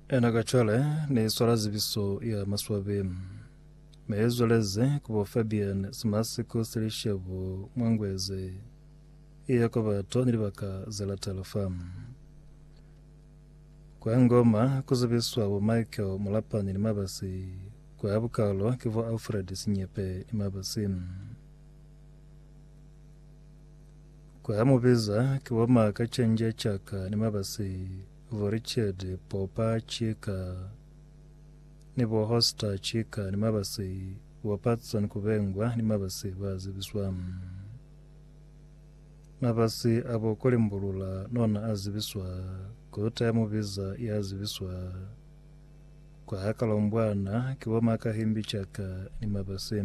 Ena ka cwale ne swala zibiso ya maswabi. Me zweleze kubo Fabian Simasiko Silishebo Mwangweze. Iya kwa bato ni libaka ze latela fam. Kwa ngoma kuzibiswa bo Michael Mulapani ni mabasi. Kwa bukalo ke bo Alfred Sinyepe ni mabasi. Kwa ha mubeza ki wa ma ka canja caka ni mabasi bo Richard Popa Chika ni bo Hoster Chika ni mabasi bo Patson Kubengwa ni mabasi ba zibiswa. Mabasi a bo Kolimbulula nona a zibiswa, kota ya mubeza ya zibiswa. Kwa ha Kalombwana ki wa ma ka himbi caka ni mabasi.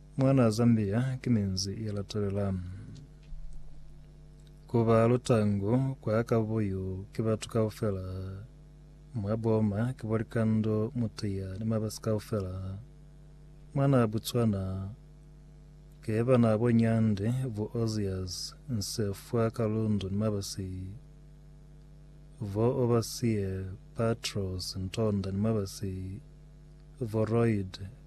Mwanaa Zambia ki minzi ye latelela. Ku ba lutangu kwa ka buyu ki batu kaufela, mwa boma ki bo likando, mutiya ni mabasi kaufela. Mwanaa Botswana ke banaa bo Nyande, bo Ozias, Nsefwa, Kalundu ni mabasi, bo Obasie, Patros, Ntonda ni mabasi, bo Royd,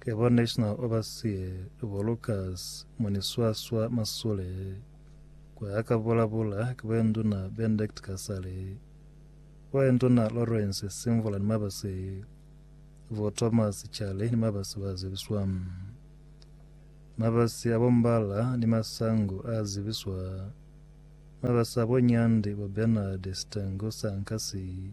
Ke bo National Overseer bo Lucas Muniswaswa Masule, kwa a ka bulabula ki bo Enduna Benedict Kasale, bo Enduna Lawrence Simvula ni mabasi, bo Thomas Chale ni mabasi ba zibiswa. Mabasi a bo Mbala ni Masangu a zibiswa. Mabasi a bo Nyandi bo Bernard Sitengo Sankasi.